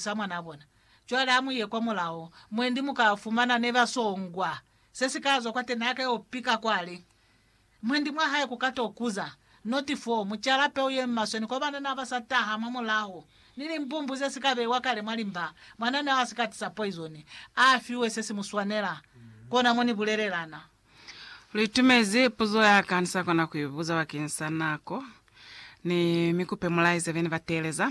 sa mwanaa bona. Cwale ha mu ye kwa mulao, mwendi mu ka fumana ne ba songwa. Se si ka zwa kwate ne a ka yo pika kwale. Mwendi mwa hae ku ka to kuza. Noti 4, Mu cala peu ye maswe ni kwa banana ba sa taha mwa mulaho, ni limbumbu ze si ka beiwa kale mwa limba. Mwanana yo a si ka tisa poizoni. A fiwe se si mu swanela. Kona mo ni bulelelana. Lu itumezi puzo ya ka ni sa kona ku i buza bakeng sa nako, ni mi kupe mu laize be ni ba teeleza.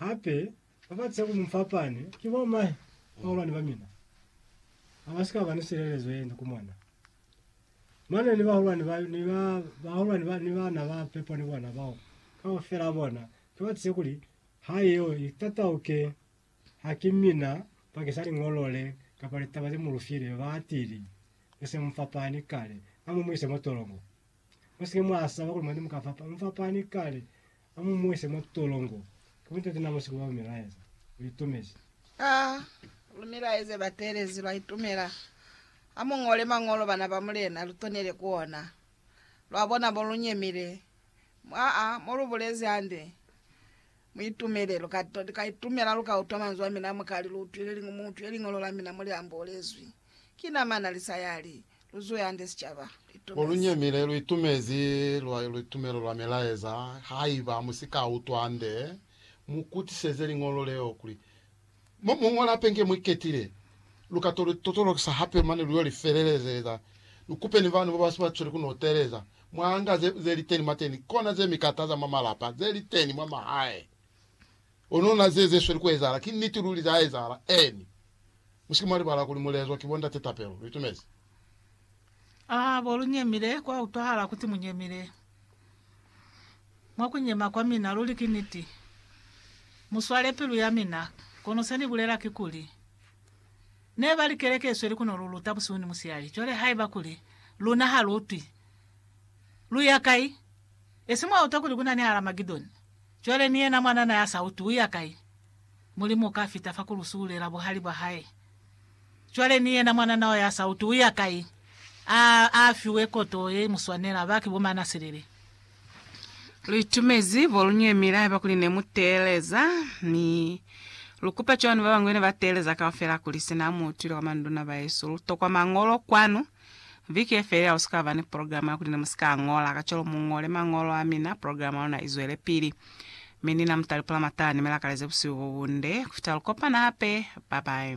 Hape, ba ba si ka ku mu fapani ki bo mahe bahulwani ba mina, ha ba si ka ba ni silelezo ye nde ku mona. Mane ni bahulwani ba, ni ba, bahulwani ba, ni bana ba pepo ni bona, bao kaufela bona, ki ba tize kuli, Ha yeo i tatauke, ha ki mina, bakeng sa Liñolo le, kapa litaba ze mu lu file, ba atile. Ni se mu fapani kale. Na mu mu ise mo tolongo. Mu si ke mwa saba kuli mwani mu ka fapana. Mu fapani kale. A mu mu ise mwa tolongo. Ki mutu yeti na mu sikuba lumilaeza. Lu itumezi. A lumilaeze bateelezi, lwa itumela. A mu ñole Mañolo, bana ba Mulena, lu tonele ku ona. Lwa bona mo lu nyemile. Mwa a, mo lu bulezi hande. Mu itumele. Lu ka, lu ka itumela, lu ka utwa manzwi a mina, mu ka li, Lu utwile, Mu utwile Liñolo la mina mo li ambolezwi. Ki nama na li saya li lu zwe hande sicaba. Mo lu nyemile, lu itumezi lwa litumelo lwa milaeza. Haiba mu si ka utwa hande, mu kutiseze liñolo leo kuli mo mu ñola hape inge mu iketile. Lu ka to li totolokisa hape mane lu yo li felelezeza. Lu kupe ni bana ba si ba cweli ku no teeleza mwa nga ze, ze li teni mwateni, kona ze mi kataza mwa malapa, ze li teni mwa mahae. Kono na ze ze sweli ku ezahala ki niti luli, za ezahala. Eeni. Mu si ke mwa libala kuli mu lezwa ki bo Ndate Tapelo. Lu itumezi? Aa, bo lu nyemile, kwa utwahala kuti mu nyemile, mwa ku nyema kwa mina. Luli ki niti. Mu swale pilu ya mina. Kono se Ni bulela kikuli, Ne bali keleke isweli ku no lu luta busihu ni musihali. Cwale haiba kuli luna ha lu utwi, lu ya kai? Esi mwa utwa kuli ku na ni Haramagedoni? Cwale ni yena mwanana ya sa uti uya kai, Mulimu uka fita fa ku lu subulela buhali bwa hae. Cwale ni yena mwanana wa ya sa uti uya kai, a, a fiwe koto ye imuswanela, ba ki bomana silili. Lu itumezi bo lu nyemile haiba kuli ne mu teeleza, mi lu kupa cwani babañwi ne ba teeleza kaufela kuli sina mu utwile kwa manduna bahesu lu tokwa Mañolo kwanu? Viki ye felela u si ka ba ni programa ya kuli ne mu si ka ñola. Kacwalo mu ñole mañolo a mina, programa ya luna i zwelepili. Mi ni na mu talipula matala ni mi lakaleze busihu bo bunde ku fita lu kopana hape. Bye bye.